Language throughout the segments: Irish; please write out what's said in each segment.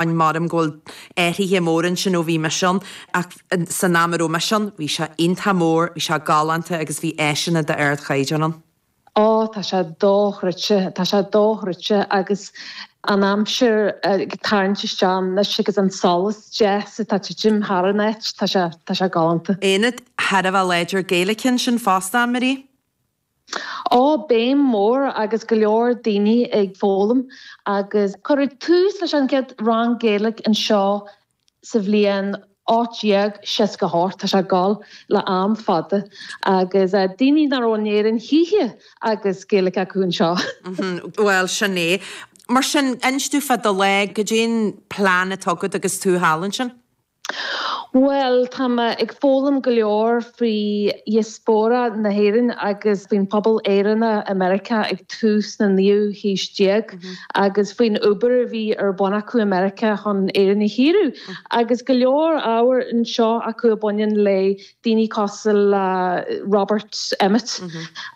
Admhaím go bhfuil athruithe móra ansin ó bhí mise ann ach san am a raibh mise ann bhí sé iontach mór, bhí sé galánta agus bhí áiseanna de ard chaighdeán ann. Ó tá sé dochreidte, tá sé dochreidte agus an aimsir ag tarraingt isteach anois agus an solas deas atá ag titim thar an áit, tá sé, tá sé galánta. Ionad thar a bheith láidir Gaeilge ansin fosta, a Marie? Á, béim mhór agus go leor daoine ag foghlaim agus cuireadh tús leis an gcéad rang Gaeilge anseo sa bhliain 1868, tá sé ag gabháil le am fada, agus daoine nach raibh in Éirinn choíche agus Gaeilge acu anseo. Bhuel, sin é. Mar sin, inis dúinn fá do lá, goidé'n plean atá agat agus tú thall ansin? Bhuel, tá mé ag foghlaim go leor faoi dhiaspóra na hÉireann agus faoin phobal Éireannach i Meiriceá ag tús na naoú haoise déag agus faoin obair a bhí ar bun acu i Meiriceá chun Éire a shaoradh. Agus go leor ábhair anseo acu a bhaineann le daoine cosúil le Robert Emmet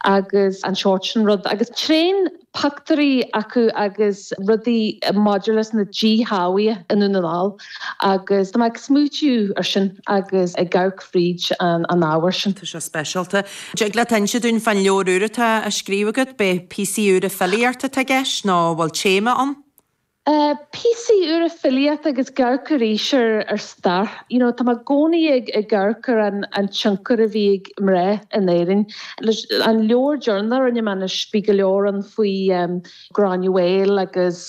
agus an sórt sin rud agus tréan pioctúirí acu agus rudaí maidir leis na díshealbhuithe i nDún na nGall agus tá mé ag smaoitiú ar sin agus ag amharc fríd an ábhar sin. Tá sé speisialta. An dtig leat inse dúinn fán leabhar úr atá á scríobh agat? Ab é píosaí úra filíochta atá i gceist nó an bhfuil téama ann? Tá píosaí úra filíochta agus ag amharc arís ar stair you know tá mé i gcónaí ag amharc ar an tionchar a bhí ag mná in Éirinn leis an leabhar deireanach a rinne mé anois bhí go leor ann faoi Gráinne Mhaol agus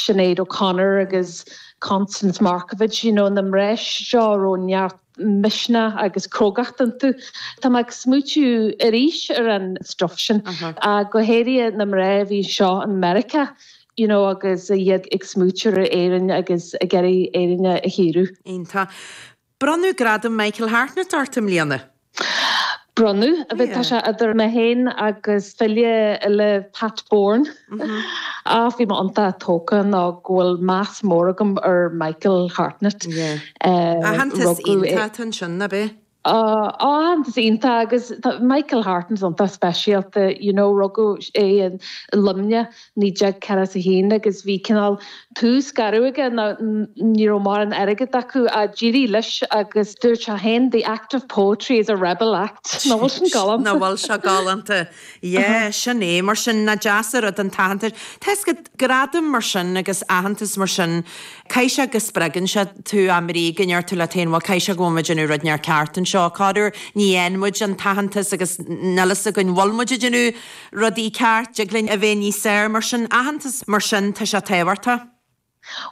Sinéad O'Connor agus Constance Markievicz you know na mná seo a raibh neart misnigh agus crógacht iontu. Tá mé ag smaoitiú arís ar an stuff sin, go háirithe na mná a bhí anseo i Meiriceá. you know agus iad ag smaoitiú ar Éirinn agus ag iarraidh Éire a shaoradh. Iontach. Bronnadh Gradam Michael Hartnett ort i mbliana. Bronnadh. Bhuel tá sé idir mé féin agus file eile Pat Boran ach bhí mé iontach tógtha nó go bhfuil meas mór agam ar Michael Hartnett. Yeah. Rugadh é. Aitheantas iontach ansin, ab é? Aitheantas iontach agus tá Michael Hartnett iontach speisialta, you know, rugadh é i Luimneach 1941 agus bhí cineál tús garbh aige, nó ní raibh mórán airgid acu ach d'éirigh leis agus dúirt sé féin, 'The act of poetry is a rebel act'. Nach bhfuil sin galánta? Nach bhfuil sé galánta? Yeah, sin é. Mar sin, nach deas an rud an t-aitheantas. Tá fhios agat, gradaim mar sin agus aitheantas mar sin, caithfidh sé go spreagann sé tú ab é, go ndeir tú leat féin, bhuel, caithfidh sé go bhfuil muid ag déanamh rud inteacht ceart anseo. Corruair, ní fhaigheann muid an t-aitheantas agus níl fhios againn bhfuil muid ag déanamh rudaí ceart, dtig linn a bheith níos fearr. Mar sin, aitheantas mar sin, tá sé tábhachtach.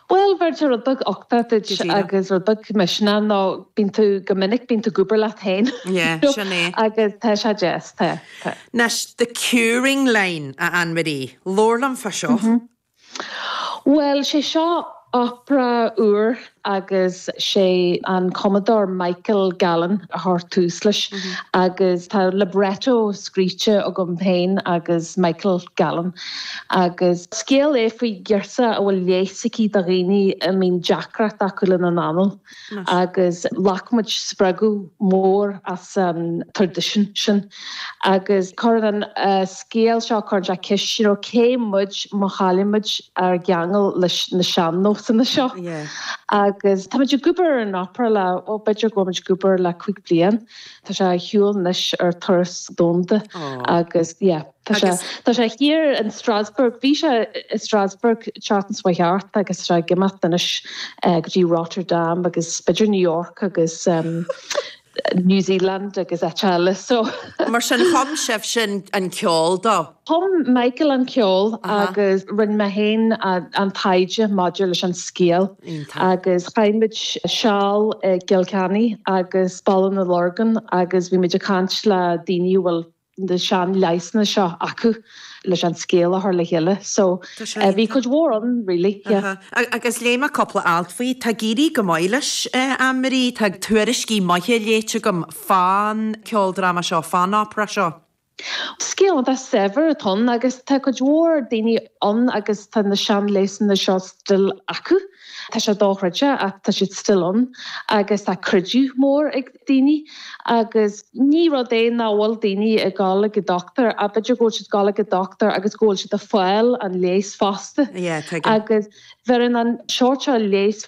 Bhuel, bheir sé rud beag uchtaigh duit agus rud beag misnigh nó bíonn tú, go minic, bíonn tú ag obair leat féin. Yeah, sin é. Agus tá sé deas, tá, tá. Anois, The Curing Line, a Ann Marie. Labhair liom fá seo. Bhuel, sé seo opera úr agus sé an cumadóir Michael Gallen a chuir tús leis agus tá libretto scríte agam féin agus Michael Gallen. agus scéal é faoi ghiorsa a bhfuil leigheas aici do dhaoine a mbíonn deacracht acu lena n-anáil agus ghlac muid spreagadh mór as an traidisiún sin agus cuireann an scéal seo, cuireann sé ceist you know cé muid má chaillimid ár gceangal leis na sean-nósanna seo agus tá muid ag obair ar an opera le, ó b'fhéidir go bhfuil muid ag obair le cúig bliain, tá sé ar shiúl anois ar turas domhanda agus yeah. Tá sé. Tá sé thíos in Strasbourg. Bhí sé i Strasbourg tseachtain seo chuaigh thart agus tá sé ag imeacht anois go dtí Rotterdam agus b'fhéidir New York agus New Zealand agus áiteacha eile so. Mar sin, chum sibhse an ceol dó? Chum Michael an ceol agus rinne mé féin an taighde maidir leis an scéal agus chaith muid seal i gCill Chainnigh agus Baile na Lorgan agus bhí muid ag caint le daoine a bhfuil na sean leigheasanna seo acu leis an scéal a chur le chéile so bhí cuid mhór ann really yeah. Agus léigh mé cúpla alt faoi, tá ag éirí go maith leis a Ann-Marie, tá tuairiscí maithe léite agam fán ceoldráma seo, fán opera seo. Scéal iontach saibhir atá ann agus tá cuid mhór daoine ann agus tá na sean leigheasanna seo still acu. Tá sé dochreidte ach tá siad still ann agus tá creideamh mór ag daoine agus ní rud é nach bhfuil daoine ag gabhail ag an dochtúir. B'fhéidir go bhfuil siad ag gabháil ag an dochtúir agus go bhfuil siad a' fáil an leigheas fosta. Agus bheireann an seort seo leigheas.